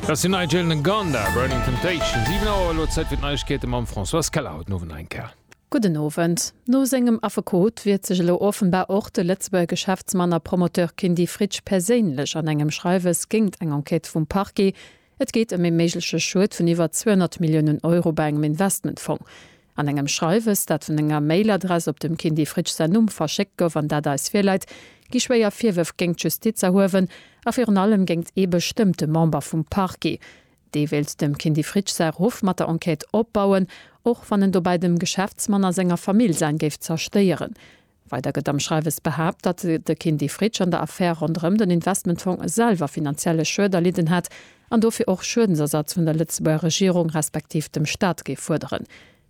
Dat ass den Nigel Nganda, Burning Temptation. 7 Auer, elo Zäit fir d'Neiegkeete mam Françoise Keller haut den Owend nach eng Kéier. Gudden Owend. No sengem Affekot wiert sech elo offenbar och de Lëtzebuerger Geschäftsmann a Promoteur Kindy Fritsch perséinlech an engem Schreiwes géingt eng Enquête vum Parquet. Et geet ëm ee méigleche Schued vun iwwer 200 Milliounen Euro bei engem Investmentfong. An engem Schreiwes, dat vun enger Mailadress op dem Kindy Fritsch säin Numm verschéckt gouf an dat eis virläit, gi schwéier Virwërf géingt d'Justiz erhuewen a virun allem géingt ee bestëmmte Member vum Parquet. Dee wéilt dem Kindy Fritsch säi Ruff mat der Enquête opbauen, och wann en dobäi dem Geschäftsmann a senger Famill säin géif zerstéieren. Weider gëtt am Schreiwes behaapt, datt de Kindy Fritsch an der Affär ronderëm den Investmentfong selwer finanzielle Schued erlidden hätt an dofir och Schuedensersatz vun der Lëtzebuerger Regierung respektiv dem Staat géif fuerderen.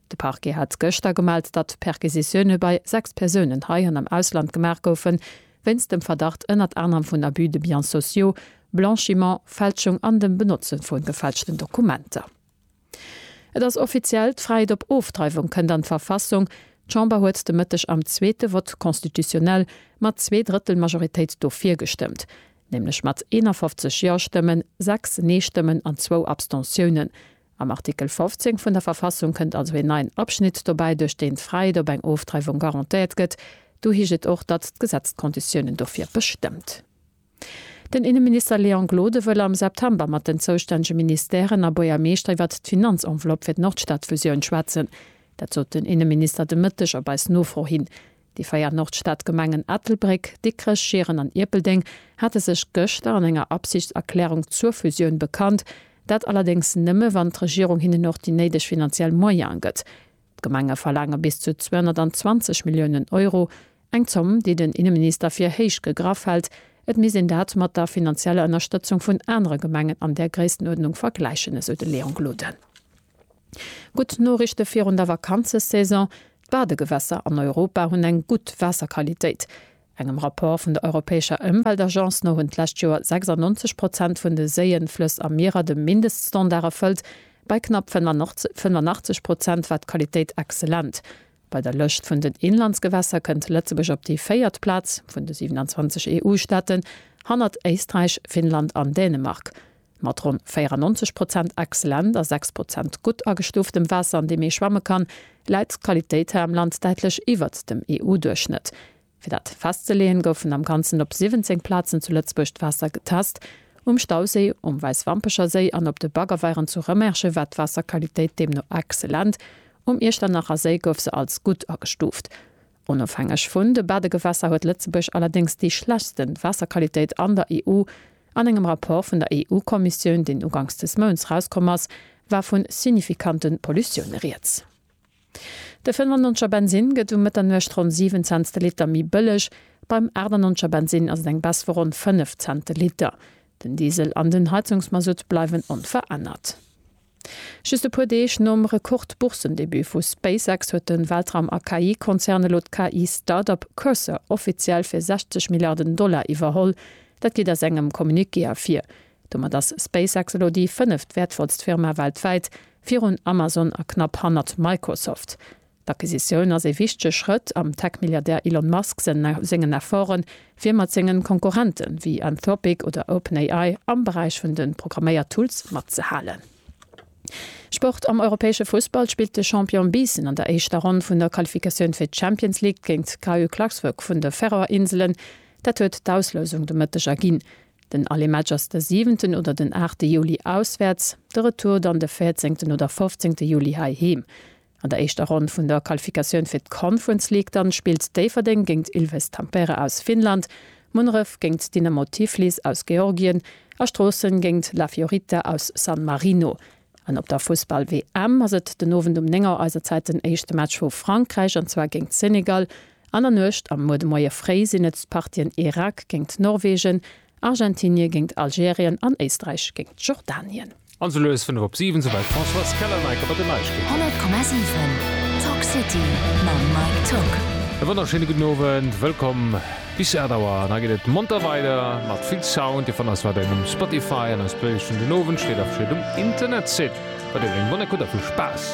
De Parquet hat gëschter gemellt, datt Perquisitioune bei 6 Persounen hei an am Ausland gemaach goufe wéinst dem Verdacht ënnert anerem vun Abus de biens sociaux, Blanchiment, Fälschung an dem Benotze vu gefälschten Dokumenter. Et ass offiziell, d'Fräiheet op Ofdreiwung kënnt an d'Verfassung. D'Chamber huet de Mëtteg am zweete Vote constitutionnel mat zwee Drëttel Majoritéit dofir gestëmmt, nämlech mat 51 Ja-Stëmmen, sechs Nee-Stëmmen an zwou Abstentiounen. Am Artikel 15 vun der Verfassung kënnt also een neien Abschnitt dobäi, duerch deen d'Fräiheet op eng Ofdreiwung garantéiert gëtt. Do heescht et och, datt d'Gesetz d'Konditiounen dofir bestëmmt. Den Inneminister Léon Gloden wëll am September mat den zoustännege Ministèren a Buergermeeschter iwwert d'Finanzenveloppe fir d'Nordstadfusioun schwätzen. Dat sot den Inneminister de Mëtteg op eis Nofro hin. Déi véier Nordstadgemengen Ettelbréck, Dikrech, Schieren an Ierpeldeng hate sech gëschter an enger Absichtserklärung zur Fusioun bekannt. Dat allerdéngs nëmme wann d'Regierung hinnen och déi néideg finanziell Moyene gëtt. D'Gemenge verlaange bis zu 220 Milliounen Euro, eng Zomm, déi den Inneminister fir héich gegraff hält. Et misst een dat mat der finanzieller Ënnerstëtzung vun anere Gemengen an där Gréisstenuerdnung vergläichen, esou de Léon Gloden. Gutt Noriichte virun der Vakanzesaison, D'Badegewässer an Europa hunn eng gutt Waasserqualitéit. Engem Rapport vun der europäescher Ëmweltagence no hunn d'lescht Joer 96 Prozent vun de Séien, Flëss a Mierer de Mindeststandard erfëllt, bei knapp 85 Prozent war d'Qualitéit excellent. Bei der Lëscht vun den Inlandsgewässer kënnt Lëtzebuerg op déi véiert Plaz vun de 27 EU-Staaten, hannert Éisträich, Finnland an Dänemark. Mat ronn 94 Prozent excellent a 6 Prozent gutt agestuuftem Waasser, an deem ee schwamme kann, läit d'Qualitéit hei am Land däitlech iwwert dem EU-Duerchschnëtt. Fir dat festzeleeën, goufen am Ganzen op 17 Plazen zu Lëtzebuerg d'Waasser getest, Um Stauséi, um Wäisswampecher Séi an op de Baggerweieren zu Rëmerschen war d'Waasserqualitéit deemno excellent. Um Iechternacher Séi gouf se als gutt agestuuft. Onofhängeg vun de Badegewässer huet Lëtzebuerg allerdéngs déi schlechtsten Waasserqualitéit an der EU. An engem Rapport vun der EU-Kommissioun, deen ugangs des Mounts rauskomm ass, war vu signifikante Pollutioune rieds. De 95 er Bensinn gëtt um Mëtternuecht ronn 7 Cents de Liter méi bëlleg. Beim 98 er Bensinn ass et eng Baisse vu ronn 5 Cent de Liter. Den Diesel an den Heizungsmasutt bleiwen onverännert. Just e puer Deeg nom Rekord-Boursendebut vu SpaceX huet de Weltraum a KI-Konzern elo d'KI-Startup Cursor offiziell fir 60 Milliarden Dollar iwwerholl. Dat geet aus engem Communiqué ervir. Domat ass SpaceX elo déi fënneft wäertvollst Firma weltwäit, virun Amazon a knapp hannert Microsoft. D'Acquisitioun ass ee wichtege Schrëtt am Tech-Milliardär Elon Musk sengen Efforten, fir mat sengen Konkurrenten, ewéi Anthropic oder OpenAI, am Beräich vun de Programméier-Tools matzehalen. Sport, Am europäesche Fussball spillt de Champion Biissen an der éischter Ronn vun der Qualifikatioun fir d'Champions League géint d'KU Klaksvik vun de Färöer Inselen. Dat huet d'Auslousung de Mëtteg erginn. Den Allé-Match ass de siwenten oder den aachte Juli auswäerts, de Retour dann de véierzéngten oder fofzéngte Juli heiheem. An der éischter Ronn vun der Qualifikatioun fir d'Conference League dann spillt Déifferdeng géingt Ilves Tampere aus Finnland, Munneref géingt Dynamo Tiflis aus Georgien a Stroossen géingt La Fiorita aus San Marino. An op der Fussball-WM ass et den Owend um 9 Auer eiser Zäit den éischte Match vu Frankräich an zwar géingt Senegal. An der Nuecht a muer de Moie fréi sinn et d'Partien Irak géingt Norwegen a Argentinië géingt Algerien an Éisträich géingt Jordanien. An sou lues 5 op 7, sou wäit d'Françoise Kellerneike mat den Neiegkeeten. 100,7 Talk City mam Mike Tock. E wonnerschéine gudden Owend, wëllkomm bis 8 Auer an hei geet et monter weider mat vill Sound. Dir fannt eis weiderhin um Spotify an eis Playlist vun den Owendschléit a virun dem Internetsite. Bei der gréng Bonn Ekutt a vill Spaass!